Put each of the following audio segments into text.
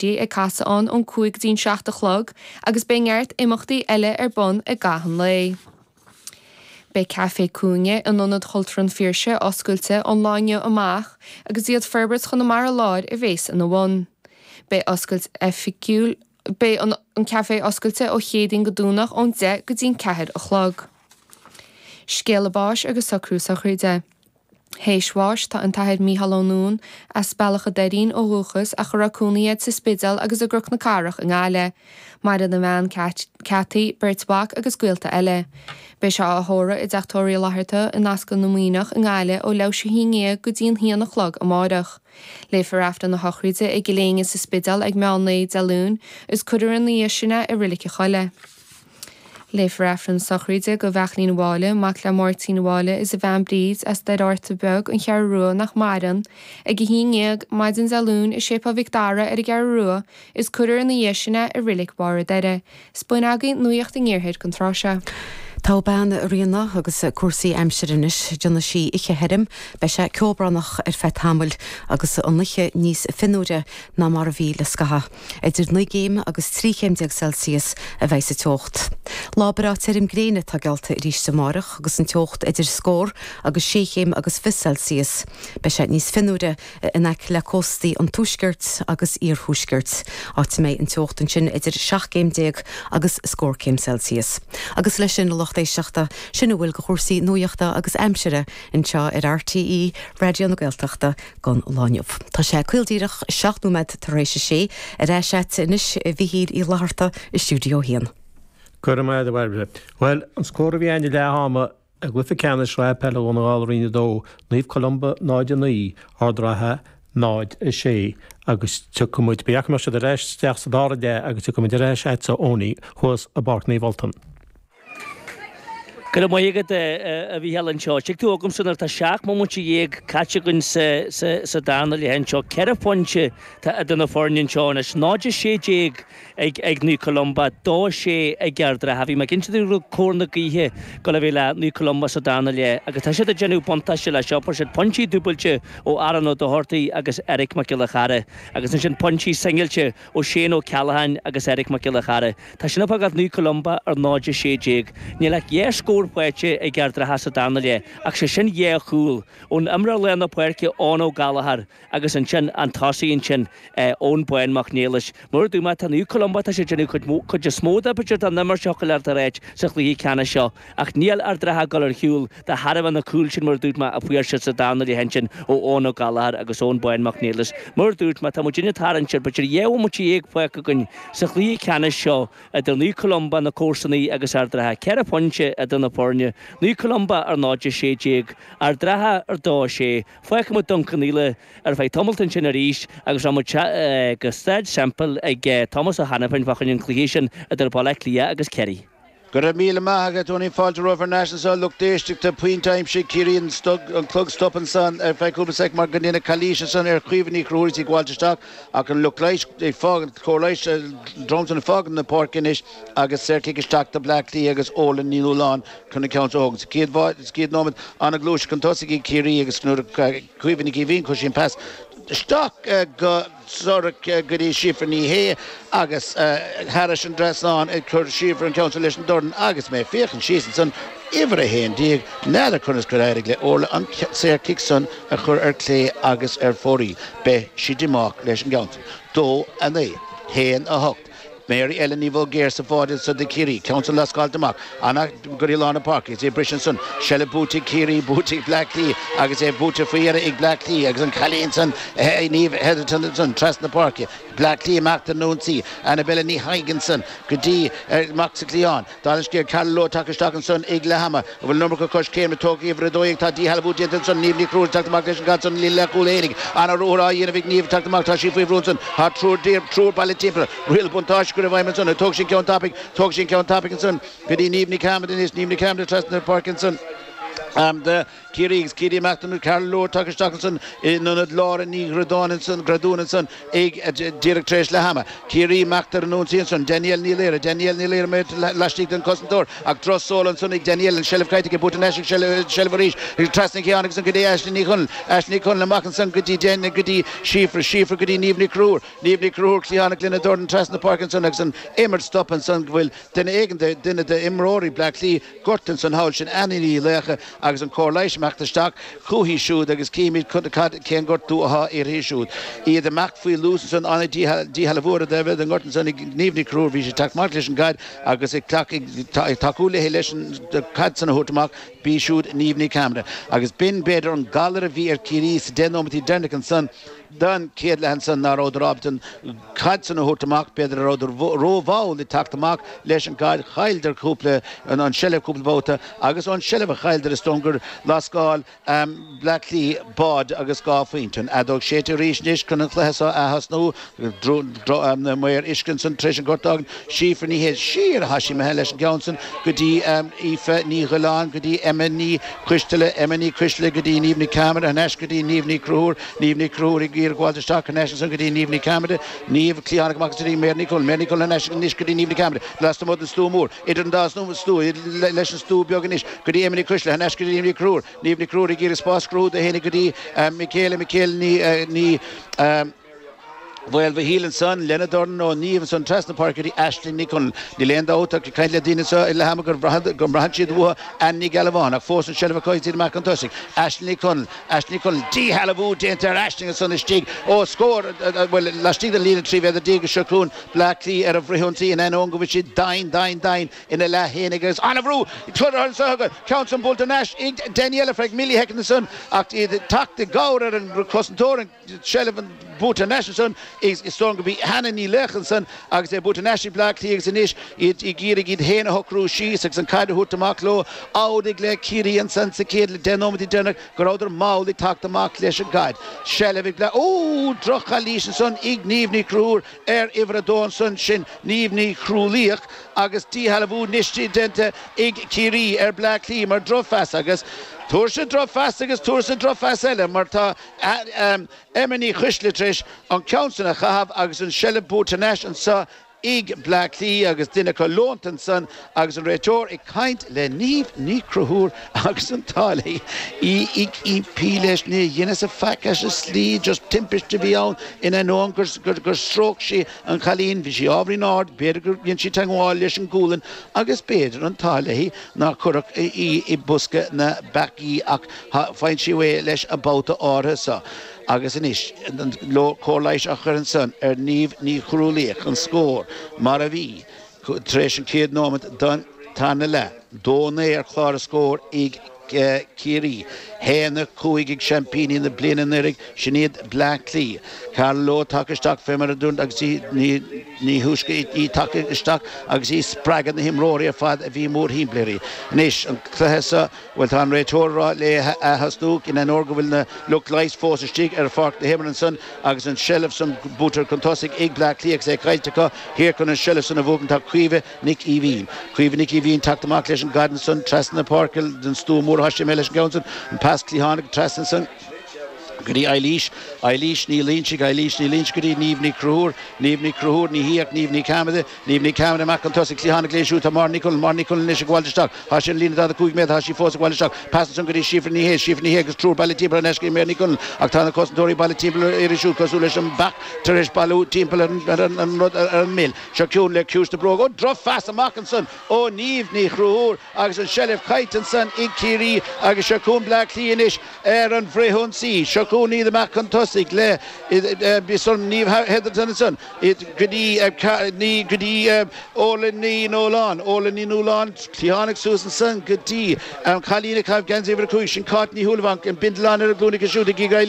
Beidh ag casadh ann ón cúig go dtí'n seacht a chlog agus beidh neart imeachtaí eile ar bun i gcaitheamh an lae. Beidh Café Cúinne in Ionad Cultúrtha an Phiarsaigh oscailte ón lá inniu amach agus iad Forbairt Chonamara Láir a bhéas ina bhun. Beidh oscailt oifigiúil Beidh an Café oscailte ó Chéadaoin go Domhnach ón deich go dtí'n ceathair a chlog. Scéala báis agus socrú sochraide. Théis bháis atá an tAthair Micheál Ó Nuadháin, as Bealach a' Doirín ó dhúchas ach a raibh cónaí air sa Spidéal agus i gCnoc na Cathrach i nGaillimh, maireann a bhean Kathy, beirt mhac agus gaolta eile. Beidh sé á thórramh i dTeach Tórraimh Uí Fhlatharta in Ascaill na Muimhneach i nGaillimh ó leath théis a haon ndéag go dtí an haon a chlog amáireach. Léifear Aifreann na Sochraide i gCill Éinne sa Spidéal ag meán lae Dé Luain agus cuirfear ina dhiaidh sin é i Reilig a' Choilligh. Léifear Aifreann Sochraide do Bheairtlín Mháille, mac le Máirtín Mháille is a bhean Bríd, as Doire Fhearta Beag, An Cheathrú Rua, nach maireann, ag 11:00, maidin Dé Luain, i Séipéal Mhic Dara ar an gCeathrú Rua, is cuirfear ina dhiaidh sin é i Reilig Bharr an Doire. Is b'in agaibh nuaíocht an iarthair don tráth seo. Tá bean Ríona agus cúrsaí aimsire anois. Déanfaidh sé oíche thirim. Beidh sé ceobhránach ar feadh tamaill agus an oíche níos fionnuaire ná mar a bhí le scaitheamh. Idir naoi gcéim agus trí chéim déag Celsius a bhéas an teocht. Lá breá tirim gréine atá geallta arís amárach agus an teocht idir scór agus sé chéim agus fiche Celsius. Beidh sé níos fionnuaire in aice le cóstaí an tuaiscirt agus iarthuaiscirt, áit a mbeidh an teocht ansin idir seacht gcéim déag agus scór céim Celsius. Agus leis sin, a lucht éisteachta, sin a bhfuil de chúrsaí nuaíochta agus aimsire anseo ar RTÉ Raidió na Gaeltachta. don lá inniu. Tá sé caol díreach seacht nóiméad tar éis a sé. Ar ais agat anois a Mhichíl Uí Fhlatharta i stiúideo a haon. Go raibh maith agat, a Bhairbre. Bhuel, an scór a bhí ann ag leath ama i gcluiche ceannais Shraith Peile Dhún na nGall Roinn 2, Naomh Columba 0, 9, Ard an Rátha 0, 6, agus tiocfaidh muid, ba cheart go mbeadh siad ar ais isteach sa dara leath agus tiocfaidh muid ar ais agatsa Ownie thuas i bPáirc Naomh Ultan. Go raibh maith agat a Mhícheáil anseo. Tig tú chugamsa nuair atá seacht mbomaite déag caite againn sa darna leath anseo. Ceithre phointe atá idir na foirne anseo anois, 0-16 ag Naomh Columba, 2-6 ag Ard an Rátha. Bhí mé ag insint go raibh cóir na gaoithe ag gabháil a bheith ag Naomh Columba sa darna leath agus tá siad ag déanamh buntáiste leis seo. Fuair siad pointí dúbailte ó Aaron Ó Dochartaigh agus Eric Mac Giolla Chearra agus ansin pointí singilte ó Shane Ó Ceallacháin agus Eric Mac Giolla Chearra. Tá sin ag fágáil Naomh Columba ar 0 16. Níl ach dhá scór faighte ag Ard an Rátha sa darna leath ach sé sin dhá chúl ón imreoir lár na páirce Eoghan Ó Gallagher agus ansin an tosaí ansin Eoin Bán Mac Niallais. Mar a dúirt mé tá Naomh Columba tá siad ag déanamh cuid is mó dá b'fhéidir dá n-imirt ach go bhfuil Ard an Rátha sa chluiche ceannais seo. Ach níl Ard an Rátha ag dul ar shiúl. De thairbhe na gcúl sin, mar a dúirt mé, a fuair siad sa dara leath ansin ó Eoghan Ó Gallachóir agus Eoin Bán Mac Niallais, mar a dúirt mé, tá muid ag tarraingt ar b'fhéidir dhá bhomaite dhéag fágtha againn sa chluiche ceannais seo idir Naomh Columba, na comharsanaí, agus Ard an Rátha, ceithre phointe idir na foirne, Naomh Columba ar 0-16, Ard an Rátha ar 2-6. Fágfaidh muid Dún Cionnaola ar feadh tamaill ansin arís agus rachaimid go Staid Semple chuig Tomás Ó hAiniféin fá choinne an chluiche sin idir Baile Átha Cliath agus Ciarraí. Go raibh míle maith agat a Tony, fáilte romhaibh ar ais anseo, lucht éisteachta pointe aimsithe ag Ciarraí an clog stoptha ansan ar feadh cúpla soicind mar go ndearnadh calaois ansan ar Chaoimhe Ní Chonchúir is í ag gabháilt isteach ach an lucht leighis ag fágaint cóir leighis ansan ag fágaint na páirce anois agus saor cic isteach do Bleá Cliath agus Orla Ní Nualláin chun an ceann seo a thógaint sa chéad sa chéad nóiméad ana ghluaiseacht chun tosaigh ag Ciarraí agus nuair a Caoimhe Nic Aoibhín chuir sí an pas isteach go Zurich go dtí Síofra Ní Shé agus thairis an dtrasnán a chuir Síofra an ceann san leis an dorn agus mé ag féachaint síos ansan uimhir 11, n'fheadar conas gur éirigh le Orla an saor cic san a chur ar clé agus ar fóraoil. Beidh sí díomách leis an gceann san. Dó a naoi. Haon a hocht. Mary Ellen Ní Bhulgaoir sa bháide ansan do Chiarraí, ceann san lascáilte amach ansan go dtí lár na páirce is é briste ansan seilbh buaite ag Ciarraí buaite ag Bleá Cliath agus é buaite faoi dheireadh ag Bleá Cliath agus an cailín san Niamh Hetherton ansan trasna páirce Bleá Cliath amach ar an ionsaí Annabelle Ní Thaidhg ansan go dtí amach sa cliathán Tá an scéal Ciara Lawlor tagtha isteach ansan ag leath ama, a bhfuil an iomarca coiscéim tógtha ag uimhir a dó dhéag. Tá díshealbhú déanta ansan. Niamh Ní Chrualaoich ag teacht amach leis an gcaid san i líne leathchúil Aonaigh. An-ruathar á dhéanamh ag Niamh ag teacht amach. Tá sí faoi bhrú ansan tá triúr, triúr bailithe timpeall. Riail buntáiste curtha i bhfeidhm ansan. Tógann sí an ceann tapaidh, tógann sí an ceann tapaidh ansan go dtí Niamh Ní Chearmada anois, Niamh Ní Chearmada trasna na páirce ansan. Ciarraí agus Ciarraí amach Ciara Lawlor tagtha isteach ansin in ionad Lauren Ní Ghrudáin ansin Graduan ansin ag díreach tar éis leath ama Ciarraí amach ar an ionsaí ansin Danielle Ní Laoire Danielle Ní Laoire í laistigh den cosantóir ach droch seoladh ansin ag Danielle an seilbh caillte ach buaite thar n-ais aici seilbh arís trasna cliathánach ansin go dtí Aishling Ní Chonaill Aishling Ní Chonaill amach ansin go dtí déine go dtí Síofra Síofra go dtí Niamh Ní Chonchúir Niamh Ní Chonchúir cliathánach lena dóthain trasna páirc ansin agus an imirt stoptha ansin go bhfuil duine éigin de duine de imreoirí Bleá Cliath gortaithe ansan thall sin Hannah Ní Laocha agus an cóir leighis ag imeacht isteach chúichi siúd agus cífimid cad cad cén gortú atá uirthí siúd. Iad ag imeacht faoi luas ansan tháinig díshealbhú díshealbhú ar bheith i ngort ansan ag Niamh Ní Chonchúir bhí sí ag teacht amach leis an gcaid agus ag teacht ag tá ag tacú léi leis an caid san a thabhairt amach bí siúd Niamh Ní Chearmada agus b'in b'fhéidir an galar a bhí ar Ciarraí sa deich nóimintí deireanach ansan den chéad leath ansan ná rabhadar ábalta an caid san a thabhairt amach, b'fhéidir go rabhadar ró-mhall ag teacht amach leis an gcaid, chailleadar cúpla, an seilbh cúpla babhta agus ón seilbh a chailleadar is dóigh gur lascáil Bleá Cliath báid agus dhá phointe an fheadóg séidte arís anois chun an cluiche so a atosnú, maor uisce ansan tar éis an ghorta agan Síofra Ní Shé siar atá sí imithe leis an gceann san go dtí Aoife Ní Dhuilleáin go dtí Emma Ní Choisteala, Emma Ní Choisteala go dtí Niamh Ní Chearmada, thar n-ais go dtí Niamh Ní Chonchúir. Niamh Ní Chonchúir ag iarraidh gabháilt isteach thar n-ais ansan go dtí Niamh Ní Chearmada, Niamh, cliathánach amach anso go dtí Mary Ní Chonaill, Mary Ní Chonaill thar n-ais anois go dtí Niamh Ní Chearmada, lasmuigh den stua mór, idir an dá stua, leis an stua beag anois go dtí Emma Ní Choisteala thar n-ais go dtí Niamh Ní Chonchúir, Niamh Ní Chonchúir ag iarraidh spás a chruthú di féinig go dtí Mikaela, Mikaela Ní. Mhaoilmhichíl ansan lena dorn ó Niamh ansan trasna páirce go dtí Aisling Ní Chonaill. Níl aon dabht ach ag caint le daoine anseo ag leath ama go mbraitheann siad uathu Anna Ní Ghealbháin ach fós an seilbh acu ag daoine amach chun tosaigh. Aisling Ní Chonaill. Aisling Ní Chonaill. Díshealbhú déanta ar Aisling ansan istigh ó scór, bhuel, laistigh den líne 13 mhéadar agus seo chugainn Bleá Cliath ar an bhfrithionsaí in ainneoin go bhfuil siad doimhin, doimhin, doimhin ina leath féin agus an-bhrú curtha ansan acu. Ceann san buaite ar ais ag Danielle Frank Millie Heckent ansan ach iad ag teacht i gcabhair ar an gcosantóir, an. Seilbh buaite thar n-ais ansan, is dóigh gurb í Hannah Ní Laocha ansan agus é buaite thar n-ais ag Bleá Cliath agus anois iad ag iarraidh iad féin a shocrú síos agus an caid a thabhairt amach leo. Amhlaidh le Ciarraí ansan sa chéad leath, deich nóiméad deireanach go rabhadar mall ag teacht amach leis an gcaid. Seilbh ag Bleá. Ó! droch-chalaois ansan ag Niamh Ní Chonchúir ar uimhir a dó ansan sin Niamh Ní Chrualaoich agus díshealbhú anois déanta ag Ciarraí ar Bleá Cliath mar drochphas agus tuirse, drochphas agus tuirse, drochphas eile mar tá Emma Ní Choisteala tar éis an ceann san a chaitheamh agus an tseilbh buaite thar n-ais anso ag Bleá Cliath agus duine acu leonta ansan agus an réiteoir ag caint le Niamh Ní Chonchúir agus an t-ádh léi, í ag impí leis nár dhein sí faic as an slí, just timpiste a bhí ann in ainneoin gur stróic sí an cailín, bhí sí ábhairín ard, b'fhéidir gur dhein sí teagmháil leis an ngualainn agus b'fhéidir an t-ádh léi nár cuireadh í i bosca na bpeacaí ach Tá foinsí uaidh leis an babhta áirithe so agus anois cóir leighis á chur ansan ar Niamh Ní Chrualaoich, an scór mar a bhí tar éis an chéad nóimeat den tarna leath. Dó naoi ar chlár na scór ag Ciarraí, haon a cúig ag seaimpíní na bliana anuiridh, sin iad Bleá Cliath. Carla Rowe tagtha isteach fé mar a dúirt agus ní thúisce í tagtha isteach agus í ag spreagadh na n-imreoirí ar fad a bhí mórthimpeall uirthi. Anois an cluiche so. Bhuel, tá an réiteoir ag rá leo atosnú, in ainneoin go bhfuil na lucht leighis fós istigh ar pháirc na himeartha ansan agus an seilbh san buailte chun tosaigh ag Bleá Cliath agus é caillte acu thiar chun an seilbh san a bhuachan tá Caoimhe Nic Aoibhín. Caoimhe Nic Aoibhín teacht amach leis an gcaid ansan trasna na páirce den stua mór tá sí imithe leis an gceann san an pas cliathánach trasna ansan go dtí Eilís, Eilís Ní Loinsigh, Eilís Ní Loinsigh go dtí Niamh Ní Chonchúir, Niamh Ní Chonchúir, ní hí ach Niamh Ní Chearmada, Niamh Ní Chearmada amach chun tosaigh cliathánach léi siúd tá Máire Ní Chonaill, Máire Ní Chonaill anois, ag gabháil isteach. Tá sí ar an líne 45 méadar. Tá sí fós ag gabháil isteach. Pas ansan go dtí Síofra Ní Shé. Síofra Ní Shé agus triúr bailithe timpeall, thar n-ais go dtí Máire Ní Chonaill. Ach tá na cosantóirí bailithe timpeall uirthi siúd cosúil leis an mbeach tar éis bailiú timpeall ar an rud ar an mil. Seo chugainn le ciumhais na bróige. Ó! Drochphas amach ansan ó Niamh Ní Chonchúir agus an seilbh caillte ansan ag Ciarraí. Agus seo chugainn Bleá Cliath anois ar an bhfrithionsaí. Seo chugainn iad amach chun tosaigh le Niamh Hetherton ansan. id go dtí ar ceathair ní go dtí Órla Ní Nualláin, Órla Ní Nualláin cliathánach suas ansan go dtí an cailín ag caitheamh geansaí uimhir a cúig, sin Cáit Ní Shúilleabháin, an bindealán ar a glúin aici siúd ag iarraidh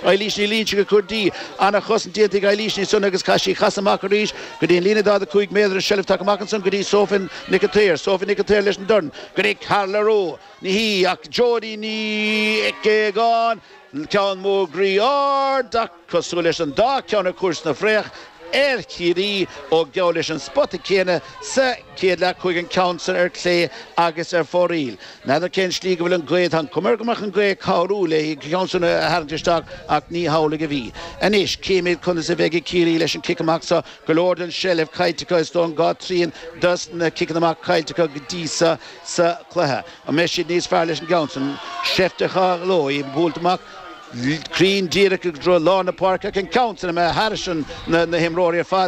Eilís Ní Loinsigh a chur di, ana-chosaint déanta ag Eilís ansan agus chaith sí casadh amach arís go dtí an líne 45 méadar an tseilbh tagtha amach ansan go dtí Sophie Nic an tSaoir, Sophie Nic an tSaoir leis an dorn go dtí Carla Rowe, ní hí ach Jodie Nic Aogáin, ceann mór groí ard, Cosúil leis an dá cheann a chuaigh sa bhfraoch ar Chiarraí ó geall leis an spota céanna sa chéad leath chuaigh an ceann san ar clé agus ar fóraoil. N'fheadar cén slí go bhfuil an ghaoth ann. Cuma air go mbeadh an ghaoth ag cabhrú léi an ceann san a tharraingt isteach ach ní hamhlaidh a bhí. Anois címid conas a bheidh ag Ciarraí leis an gcic amach seo. Go leor den tseilbh caillte acu is dóigh dhá thrian dos na ciceanna amach caillte acu go dtí seo sa chluiche. An mbeidh siad níos fearr leis an gceann san? Seift a shamhlóidh buailte amach cruinn díreach i dtreo lár na páirce ach an ceann san imithe thairis na himreoirí ar fad